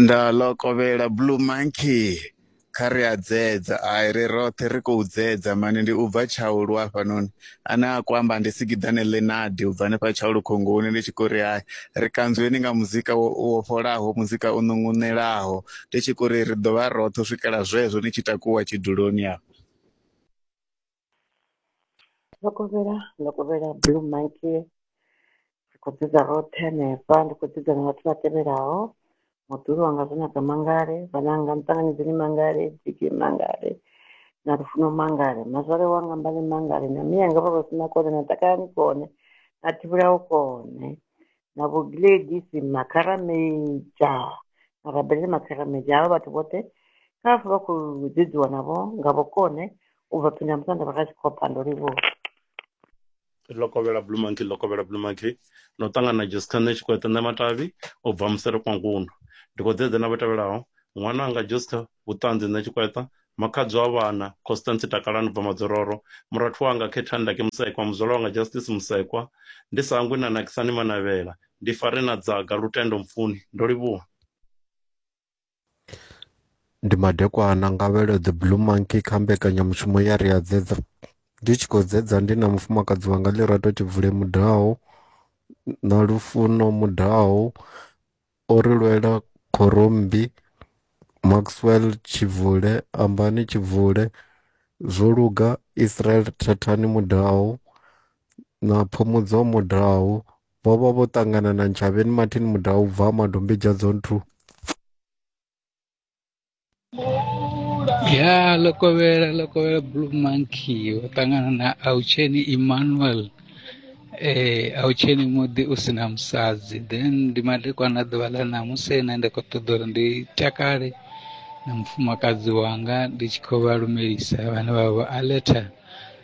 Nda ḽo kovhela blue monkey kha ri a dzedza ai ri roṱhe ri khou dzedza mani ndi u bva tshaulu hafhanoni ane a khou amba ndi sikiḓane Lenard u bva hanefha tshaulu khongoni ndi tshi khou ri hai ri kanzweni nga muzika wo wo fholaho muzika u ṋuṋunelaho ndi tshi khou ri ri ḓo vha roṱhe u swikela zwezwo ni tshi takuwa tshiduloni afho. Ndo kovhela, ndo kovhela Blue Monkey, ri kho u dzidza roṱhe hanefha, ndi kho u dzidza na vhathu vha tevhelaho, muḓuhulu wanga Zwanaka Mangale, vhananga Muṱanganedzeni Mangale, Biggie Mangale na Lufuno Mangale, mazwale wanga Mbali Mangale na mianga Vhalusina Kone na Takalani Kone na Thivhelao Kone na vho gladys makharameja marabelele makharameja havha vhathu vhoṱhe kha vha pfhe vha khou dzedziwa navho nga vhukone u bva phinda musanda vha kha tshikhopa ndo livhuwa lokovhela blue monkey lokovhela blue monkey no ṱangana na jessica nṋe tshikwete nṋe matavhi u bva musere kwa ngundu ndi khou dzedza na vho tevhelaho ṅwana anga jessica vhuṱanzi nṋe tshikweta Makhadzi wa vhana, Constance Takalani Bva Madzororo, murathu wanga Khetha Ndaki Musekwa, muzwala wanga Justice Musekwa, ndi sa hangwi na Nakisani Manavhela, ndi fare na Dzaga, Lutendo Mpfuni. Ndo livhuwa. Ndi madekwana, Ngavhelo The Blue Monkey kha mbekanyamushumo ya Ri a Dzedza. Ndi tshi khou dzedza ndi na mufumakadzi wanga Lirato Tshivule Mudau na Lufuno Mudau o ri lwela khorommbi, Maxwell Tshivule, Ambani Tshivule, Zwo luga, Israel Thathani Mudau na Phumudzo Mudau vho vha vho ṱangana na Ntshavheni Martin Mudau u bva Ha Madombidzha Zone 2. ya ḽo kovhela ḽo kovhela blue monkey wo ṱangana na autsheni emmanuel eh autsheni muḓi u si na musadzi then ndi madekwana ḓuvha ḽa ṋamusi ene ndi khou ṱoḓa uri ndi takale na mufumakadzi wanga ndi tshi khou vha lumelisa vhane vha vha aletha